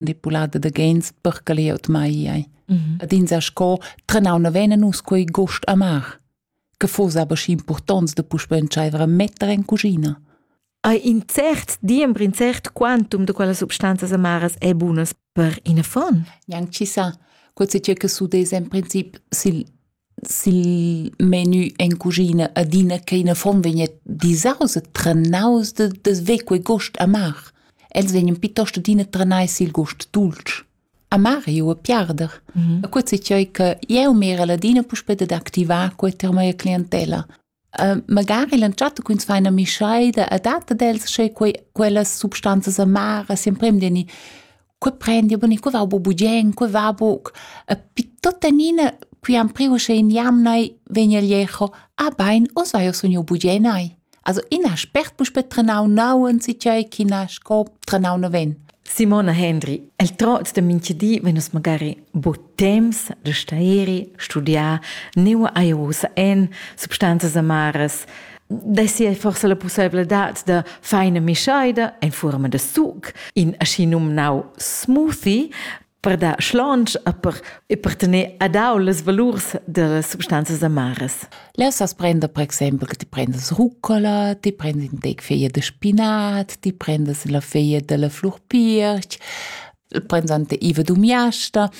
manipulada da gens per che glieud mai ei. Mm -hmm. Ad ins sco trenau na vena nus quei gost amar. Che fos aber schi importants da puspe entscheiver a metter in cucina. Hai in cert diembr, in cert quantum de quella substanzas amaras è bunas per in affon? Gnanc ci sa. Quel se che su des en princip sil Sil menu en cuschina adina ch'ina fom vegn disaus e trenaus de desver quei gust amar. Els vegnan piuttost adina trenai sil gust dultsch. Amar ei uva piarder. E quei ei tgei che jeu mirel adina puspei dad activar quei tier mia clientella. Uh, magari l'entschatta quins faina mischaida a data dels sche quei, quellas substanzas amaras sempre deni que prendi boni que va bu bugen que va buc e pi tota nina qui am priu sche in jamnai vegn el jecho a bein os vai os un bugenai also in aspect mus per trenau nauen si tgei china sco trenau no ven Simona Hendry, el trots da minchadi vegn nus magari bod temps da stairi, studiar, neua ei ussa en substanzas amaras, dessi ei forsa la pussebladad da feina mischaida en forma da suc, in aschi numnau smoothie, per dar schlonch e per, e per tener adau las valurs das substanzas amaras. Lessas prender per exempel che ti prendas rucola, ti prendas in tec feia de spinat, ti prendas la feia della flurpirch, prends ante iva dumiasta,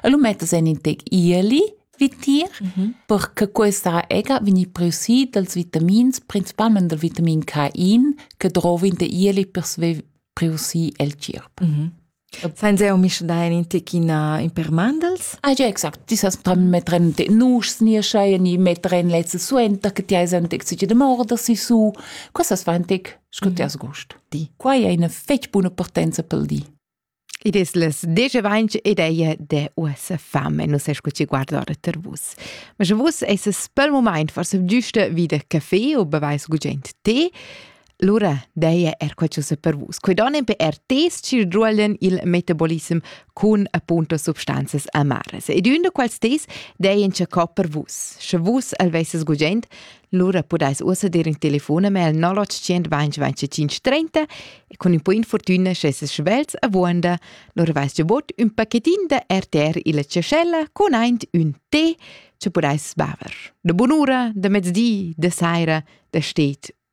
e lu mettas en in tec ieli, vitier, mm -hmm. perché questa ega vegni preusi dals vitamins, principalmente del vitamin Cain, che drova in te ieli per sve preusi el cirp. Mm -hmm. Sainza eu misch dain in tec ina in per mandels? Ah ja, exact. Ti sast metteren de nuschs nieschaien i metteren lezze suenter che ti hai ein tec sich de morder si su. Quessas va ein tec, sco ti has gust. Di. Quai è una fetg buona partenza pel di. Id es les 10.20 ed ei de US fam e non sai sco ci guardare ter vus. Ma sche vus es pel moment forse giuste wieder caffè o beweis gugent tee, Lura daja er quai ch'ussa per vus. Quai donen per er tes chir druolen il metabolism cun appunto substanzas amaras. Ed un da quals tes dajen che co per vus. Sche vus al vesses gugent, lura pudais ussa dir in telefonemail 0825 e con un po infortuna schesses schvelz a vuanda, lura vais già bot un pacchettin da RTR illa cescella con aint un tè che pudais baver. Da bun'ura, da mezdi, da saira, da stet